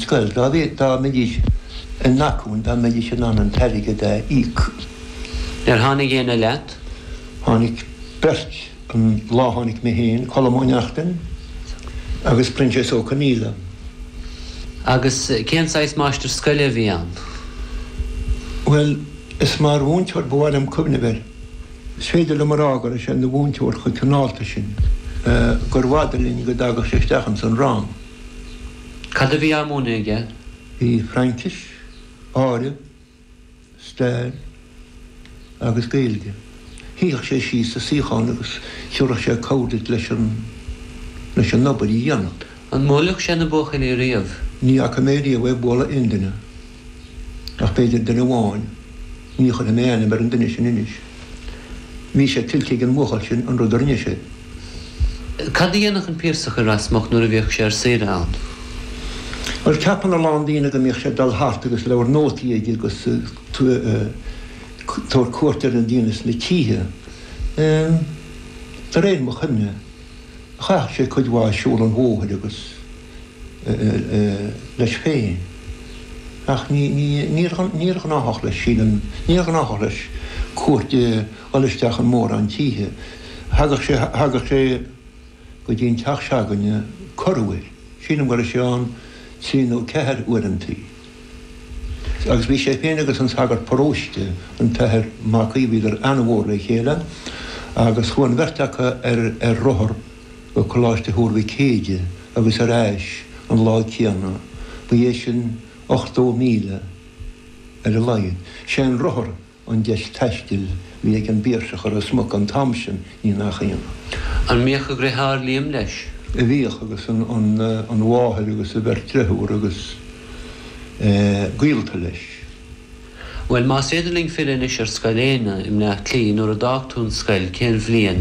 scoil. Dá mbeidís in n-acmhainn, dá mbeidís in ann an t-airgead a íoc. Ar tháinig aon fhear leat? Tháinig beirt. An lá a tháinig mé féin, Colm Ó Neachtain agus Proinsias Ó Conaola. Agus cén saghas máistir scoile a bhí ann? Bhuel, is mar mhúinteoir ba mhaith liom cuimhneamh air. Is féidir liom a rá go raibh sé ina mhúinteoir chomh cineálta sin gur bhfada linn go dtagadh sé isteach ins an rang. Cad a bhí á múineadh aige? Bhí Fraincis, áireamh, stair agus Gaeilge. Shuíodh sé síos sa suíochán agus thiúradh sé cabhair duit leis an obair a bhí le déanamh. An mbuaileadh sé na buachaillí riamh? Ní fhaca mé riamh é bualadh aon duine. ach b'fhéidir duine amháin, ní chuirfidh mé ainm ar an duine sin anois. Bhí sé tuillte ag an mbuachaill sin an rud a rinne sé. Cad a dhéanadh an Piarsach i Ros Muc nuair a bhíodh sé ar saoire ann? Bhuel, ceapann a lán daoine go mbíodh sé ag dul thart agus leabhar nótaí aige agus ag tabhairt cuairt ar na daoine sna tithe. De réir mo chuimhne, chaitheadh sé cuid mhaith ag siúl an bhóthair agus. leis féin ach níor ghnáthach leis, níor ghnáthach leis cuairt a dhul isteach in mórán tithe. Thagadh sé go dtí an teach se'againne corruair, sílim go raibh sé ann trí nó ceathair uaireantaí. Agus bhí sé féin agus an sagart paróiste, an tAthair Mac Aodha, bhíodar an-mhór le chéile agus chuaigh an bheirt acu ar rothar, go Coláiste Thuar Mhic Éadaigh agus ar ais an lá céanna, ba é sin 80 míle ar a laghad. Sé an rothar an deis taistil bhí ag an bPiarsach i Ros Muc an t-am sin, ní nach ionadh. An mbíodh a dhriotháir Liam leis? Bhíodh agus an mháthair agus a bheirt dreifiúr agus gaolta leis. Bhuel, más féidir linn filleadh anois ar Scoil Éanna i mBleá Cliath, nuair a d'fhág tú an scoil, cén bhliain?